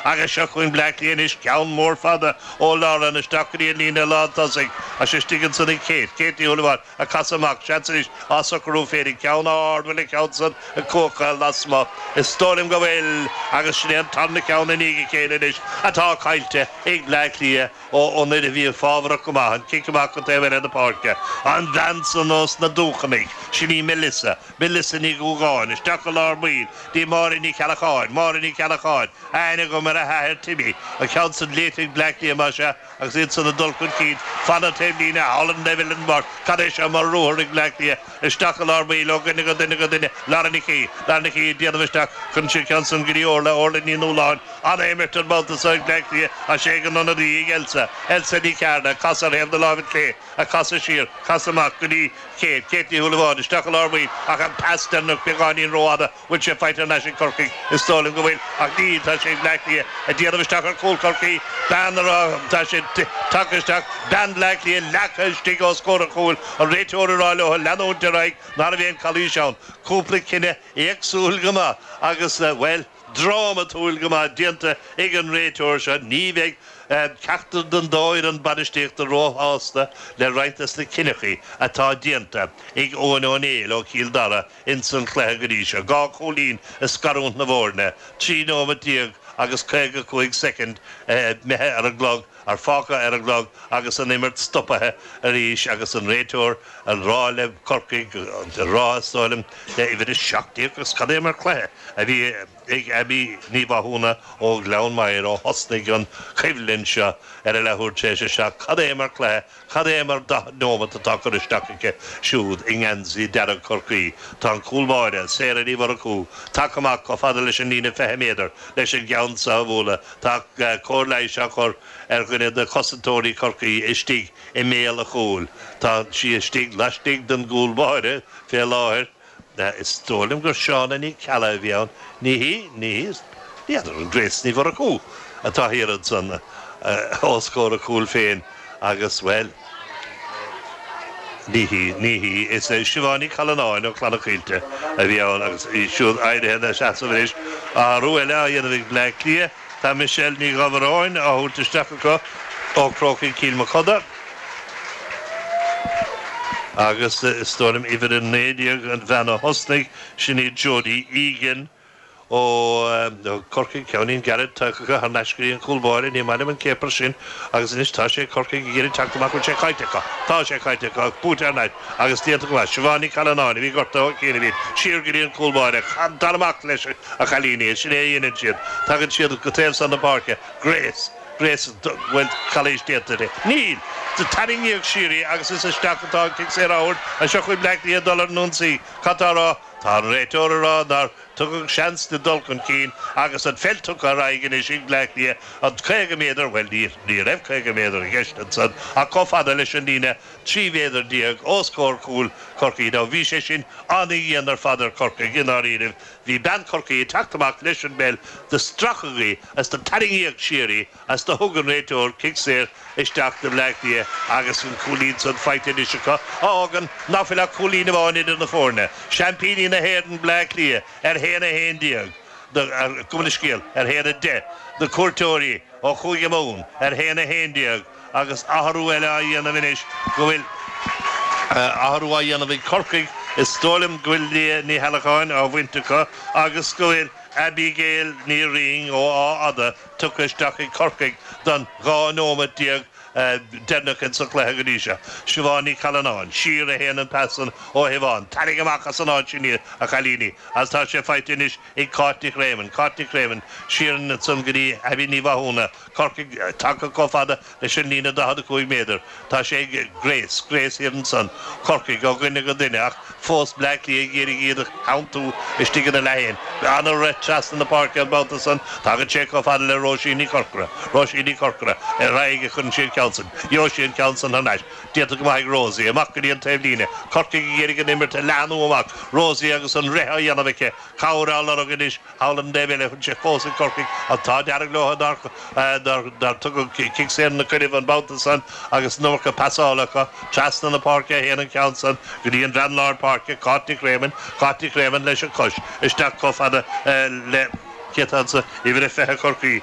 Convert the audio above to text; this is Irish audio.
Agus seo chugainn Bleá Cliath anois, ceann mór fada ó lár an isteach go dtí an líne lántosaigh is é istigh ansan ag Kate, Kate Ní Shúilleabháin, a casadh amach, seans anois, á socrú féin ag ceann ard, an bhfuil an ceann san ag cuachail lasmuigh. Is dóigh liom go bhfuil. Agus sin é an tarna ceann i ndiaidh a chéile anois atá caillte ag Bleá Cliath ó ionad a bhí fabhrach go maith an cic amach go taobh eile na páirce. An bhean san ós na Dúchanaigh, sin í Melissa, Melissa Ní Dhúgáin, isteach go lár baill go dtí Máire Ní Cheallacháin, Máire Ní Cheallacháin, aithne agam ar a hathair Timmy, an ceann san léite ag Bleá Cliath más ea agus iad san ag dul chun cinn, fan an taobhlíne, thall ar an dtaobh eile den bpáirc, cad é seo mar ruathar ag Bleá Cliath, isteach go lár baill, ó dhuine go duine go duine, Lauren Nic Aoidh, Lauren Nic Aoidh ag déanamh isteach chun an ceann san go dtí Orla, Orla Ní Nualláin, an-imirt an babhta so ag Bleá Cliath is é ag an ionadaí ag Elsa, Elsa Ní Chearna, casadh ar thaobh na láimhe clé, a casadh siar, casadh amach go dtí Kate, Kate Ní Shúilleabháin, isteach i lár baill, ach an pas deireanach beagáinín rófhada, bhfuil sé faighte thar n-ais ag Corcaigh? Is dóigh liom go bhfuil, ach níl, tá sé ag Bleá Cliath, ag déanamh isteach ar chúl Chorcaí, bean a raibh, tá sé tagtha isteach, bean Bhleá Cliath leagtha istigh os comhair an chúil, an réiteoir ag rá leotha leanúint ar aghaidh, ná raibh aon chalaois ann, cúpla cinneadh éagsúil go maith agus, bhuel. drámatúil go maith déanta ag an réiteoir seo, ní bheidh ceachtar den dá fhoireann bainistíochta róshásta le roinnt des na cinneachaí atá déanta ag Eoghan Ó Néill ó Chill Dara ins an chluiche go dtí seo, dhá chúilín ag scarúint na bhfoirne, trí nóimeat déag agus caoga cúig soicind imithe ar an gclog. ar fágtha ar an gclog agus an imirt stopaithe arís agus an réiteoir ag rá le Corcaigh ag rá, is dóigh liom, le uimhir a seacht déag agus cad é mar cluiche a bhí ag Abby Ní Mhathúna ó Ghleann Maghair ó thosnaigh an choimhlint seo ar a leathuair tar éis a seacht, cad é mar cluiche Cad é mar daichead neomat atá curtha isteach aici siúd i ngeansaí dearg Chorcaí. Tá an cúl báire, Sarah Ní Mhurchú, tagtha amach chomh fada leis an líne 20 méadar leis an gceann seo a bhualadh. Tá cóir leighis á chur ar dhuine de chosantóirí Chorcaí istigh i mbéal a chúil. Tá sí istigh laistigh den gcúl báire fé láthair. Is dóigh liom gur Shauna Ní Cheallaigh a bhí ann. Ní hí, ní hí. N'fheadar an Grace Ní Mhurchú atá thiar ansan os comhair a cúil féin agus, bhuel, ní hí, ní hí. Is í Siobhán Ní Challanáin ó Chlanna Caoilte a bhí ann agus í siúd éirithe ina seasamh anois. Athrú eile á dhéanamh ag Bleá Cliath. Tá Michelle Ní Dhábhoireann á tabhairt isteach acu ó Chrócaigh Chill Mochuda agus is dóigh liom uimhir a naoi déag an bhean a thosnaigh, sin í Jodie Egan ó Chorcaigh. Ceainnín gairid tugtha acu thar n-ais go dtí an cúl báire, ní maith liom an céapar sin, agus anois tá sé ag Corcaigh ag iarraidh teacht amach, bhfuil sé caillte acu? Tá sé caillte acu, ach buaite thar n-ais. agus déanta go maith. Siobhán Ní Challanáin a bhí gortaithe ó chianaibhín siar go dtí an Cúl Báire. Téanam amach leis a chailíní. Is sin é a dhéanann siad. Tagann siad go taobh san na páirce. Grace. Grace bhfuil calaois déanta aici? Níl! Do tarraingíodh siar í agus is isteach atá an cic saor á thabhairt. Seo chugainn Bleá Cliath ag dul ar an ionsaí. Cad tá á rá? Tá an réiteoir á rá nár tugadh seans di dul chun cinn agus an pheil tugtha ar aghaidh anois ag Bleá Cliath an 50 méadar, bhuel, ní raibh 50 méadar i gceist ansan ach chomh fada leis an líne. 13 mhéadar os comhair chúl Chorcaí. Now bhí sé sin an-dhian ar fad ar Chorcaigh i ndáiríribh. Bhí bean Chorcaí ag teacht amach leis an bpeil do stracadh í is do tarraingíodh siar í is do thug an réiteoir cic saor isteach do Bhleá Cliath agus an cúilín san faighte anois acu a fhágann ná fuil ach cúilín amháin idir na foirne seaimpíní na hÉireann Bleá Cliath ar a haon a 11 nó gabh mo leithscéal ar a haon a 10 na cuairteoirí ó Chúige Mumhan ar a haon a 11 Agus athrú eile á dhéanamh anois go bhfuil athrú á dhéanamh ag Corcaigh, is dóigh liom go bhfuil Liadh Ní hAllacháin á bhaint acu agus go bhfuil Aibígéil Ní Rinn ó Áth Fhada tugtha isteach ag Corcaigh don 12 nóiméad deireanacha sa chluiche go dtí seo. Siobhán Ní Challanáin, siar, a théann an pas san ó Shiobhán. Tarraing amach as an áit sin iad, a chailíní, agus tá sé faighte anois ag Cáit Nic Réamoinn. Cáit Nic Réamoinn, siar ansin go dtí Aibí Ní Mhathúna. Corcaigh, tagtha comh fada leis an líne 45 méadar. Tá sé ag Grace, Grace thiar ansan, Corcaigh, ó dhuine go duine, ach fós Bleá Cliath ag iarraidh iad a theanntú istigh ina leath féin. An-rith trasna na páirce an babhta san. Tagann sé comh fada le Róisín Ní Chorcora. Róisín Ní Chorcora, ar aghaidh a chuireann sí an ceann san. Gheobhaidh sí an ceann san thar n-ais. Déanta go maith ag Rosie. Amach go dtí an taobhlíne. Corcaigh ag iarraidh an imirt a leathnú amach. Rosie agus an rith á dhéanamh aici. Cabhair á lorg anois. Tugann do Melissa é fós ag Corcaigh an t-ádh dearg leo nár tugadh cic saor ina gcoinnibh an babhta san agus an iomarca pasála acu trasna na páirce a théann an ceann san go dtí an mbean lár páirce Cáit Nic Réamoinn Cáit Nic Réamoinn leis an gcois isteach comh fada le Kate anso uimhir a fiche Corcaí